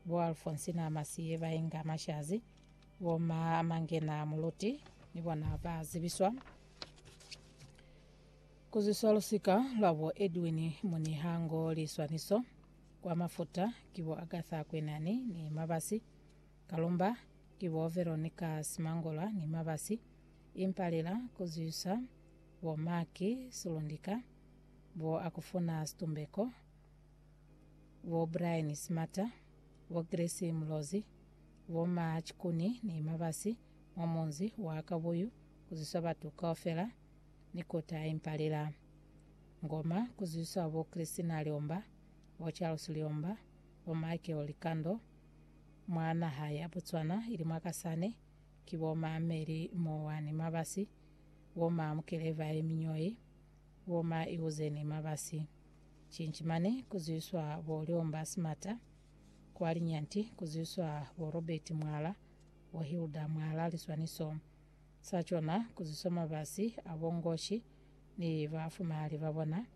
bo Alfonsi na Masiye ba inga mashazi, bo ma Mangena Muluti ni bona ba zibiswa ku zwiswa lusika lwa bo Edwin Munihango liswaniso kwa mafuta ki bo Agatha Kwenani ni Mabasi, Kalumba ki bo Veronica Simangola ni Mabasi, Impalela ku zwisa bo Maki Sulundika, bo Akufuna Situmbeko, bo Brian Smata, bo Grace Mulozi, bo Ma Chikuni ni Mabasi mwa munzi wa Kabuyu ku zwiswa batu kaufela ni ku taimpalela ngoma ku zwiswa bo Christina Liomba, bo Charles Liomba, bo Michael Likando mwa naha ya Botswana ili mwa Kasane ki bo Ma Mary Mowa ni Mabasi, bo Ma Mukeleva Eminyoi, bo Ma Iwuzeni Mabasi. Cinci mane ku zwiswa bo Lyomba Simata, kwa Linyanti ku zwiswa bo Robert Mwala, bo Hilda Mwala liswaniso sa cona ku zwiswa mabasi a bo Ngoshi ni ba fumahali ba bona,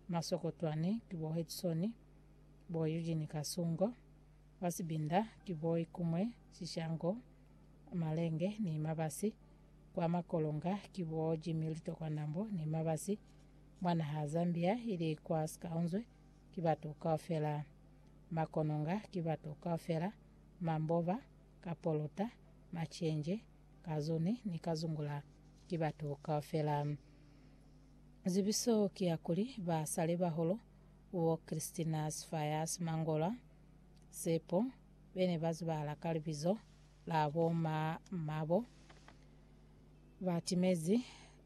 Masokotwani ki bo Headson, bo Eugene Kasungo, ba Sibinda ki bo Ikumwe Shishango, Malenge ni mabasi, kwa Makolonga ki bo Jimmy Litokwa Nambo ni mabasi, Mwa naha Zambia ili kwa sikaunzwe ki batu kaufela. Makononga ki batu kaufela, Mamboba, Kapoluta, Macenje, Kazuni ni Kazungula ki batu kaufela. Zibiso ki ya kuli ba sale bahulu bo Christina Sifayasi Mangolwa, Sepo, bene ba zibahala ka libizo la bo ma Mabo, ba timezi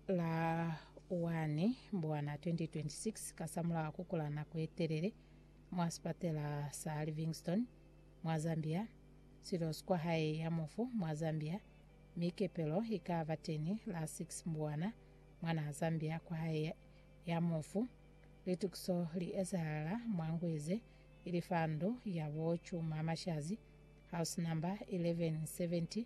La 1 Mbwana 2026, kasamulaho kukula nako yetelele mwa sipatela sa Livingstone mwa Zambia, Silos kwahae ya mufu mwa Zambia, mi kepelo ikaba teni la 6 Mbwana mwanaa Zambia kwahae ya mufu. Litukiso li ezahala mwa ngwe ze ili fa ndu ya bo Chuma Mashazi, house number 1170,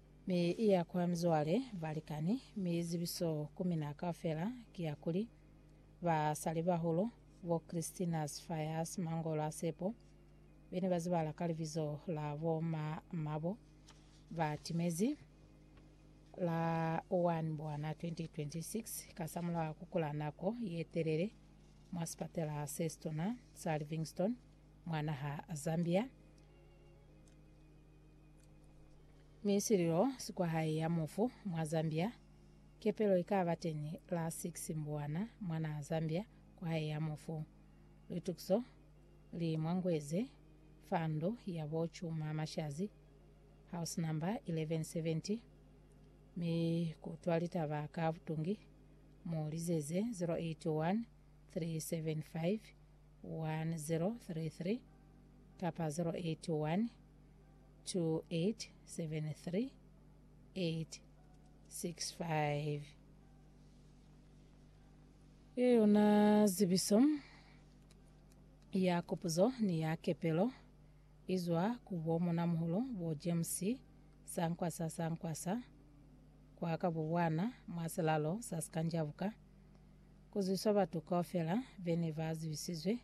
Mi i ya kwa mizwale, balikani, mi zibiso ku mina kaufela ki ya kuli, Basalibahulu, bo Christina's Fires, Mangolo a Sepo, be ne ba zibala ka libizo la bo ma, mabo ba timezi, la 1 Mbwana 2026, kasamulaho ku kula nako ye telele mwa sipatela se situna sa Livingstone mwa naha Zambia. Mi sililo si kwa hae ya mufu mwa Zambia. Kepelo ikaba teni la 6 Mbuwana mwa naha Zambia kwa hae ya mufu. Litukiso li mwa ngweze fa ndu ya bo Chuma Mashazi, house number 1170, mi kutwa litaba ka butungi, mu lizeze 081 375 1033 kapa 081 2873865. Ye yona zibiso ya kupuzo ni ya kepelo izwa ku bo Monamuhulu bo James Sankwasa Sankwasa kwa ka Bubwana mwa silalo sa Sikanjabuka, kuzwiswa batu kaufela bene ba zibisizwe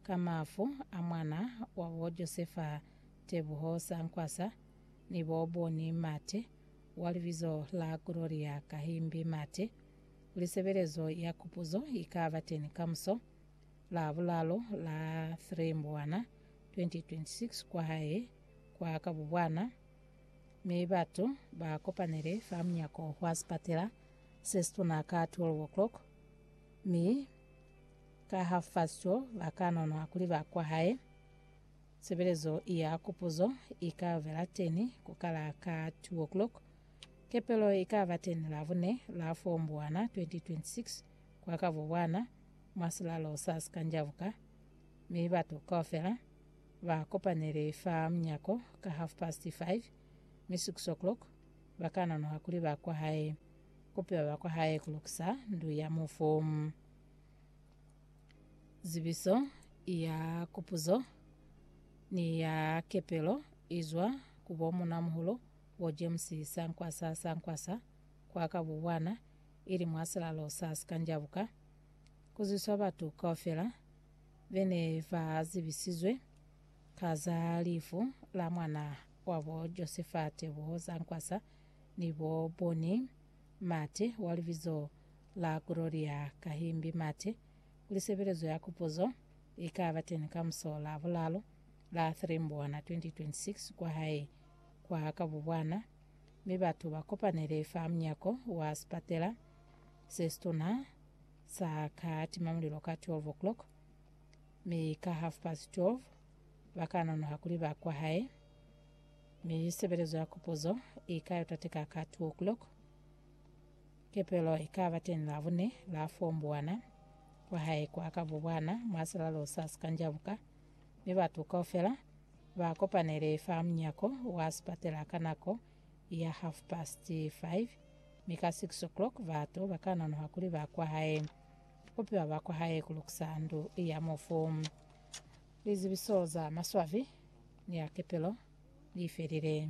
Ka mafu a mwana wabo Josefa Tebuho Sankwasa ni bo Bonnie Mate wa libizo la Gloria Kahimbi Mate, lisebelezo ya kupuzo ikaba teni kamuso, Labulalo la 3 Mbwana 2026 kwahae kwa Kabubwana, mi batu ba kopanele fa munyako wa sipatela sesituna ka 12 o'clock, mi. Ka ha fa sico, ba ka nonwa kuli ba kwa hae. Sebelezo ya kupuzo i ka vela teni ku kala ka 2 o'clock. Kepelo i ka ba teni Labune, la 4 Mbuwana 2026, kwa ka Bubwana, mwa silalo sa Sikanjabuka, mi batu kaufela ba kopanele fa munyako ka half past 5, mi 6 o'clock ba ka nonwa kuli ba kwa hae. Kupiwa ba kwa hae ku lukisa ndu ya mufu. Zibiso ya kupuzo ni ya kepelo izwa ku bo Munamuhulu bo James Sankwasa Sankwasa kwa ka Bubwana ili mwa silalo sa Sikanjabuka, kuzwiswa batu kaufela bene ba zibisizwe ka za lifu la mwana wabo Josefa Teboho Sankwasa ni bo Bonnie Mate, wa libizo la Gloria Kahimbi Mate, kuli sebelezo ya kupuzo ikaba teni kamuso la bulalo la 3 Mbwana 2026 kwa hae kwa Kabubwana, mi batu ba kopanele fa munyako wa sipatela sesituna sa ka timamulilo ka 12 o'clock, mi ka half past 12 ba ka nonoha kuli ba kwa hae. Mi sebelezo ya kupuzo i ka yo tateka ka 2 o'clock. Kepelo i ka ba teñi Labune, la 4 mbuwana, kwa hae kwa ka bubwana, mwa silalo sa sikanjabuka, mi batu kaufela ba kopanele fa munyako wa sipatela ka nako ya half past 5, mi ka 6 o'clock batu ba ka nonoha kuli ba kwa hae. Ku piwa ba kwa hae ku lukisa ndu ya mufu. Lizibiso za maswabi ni a kepelo li felile.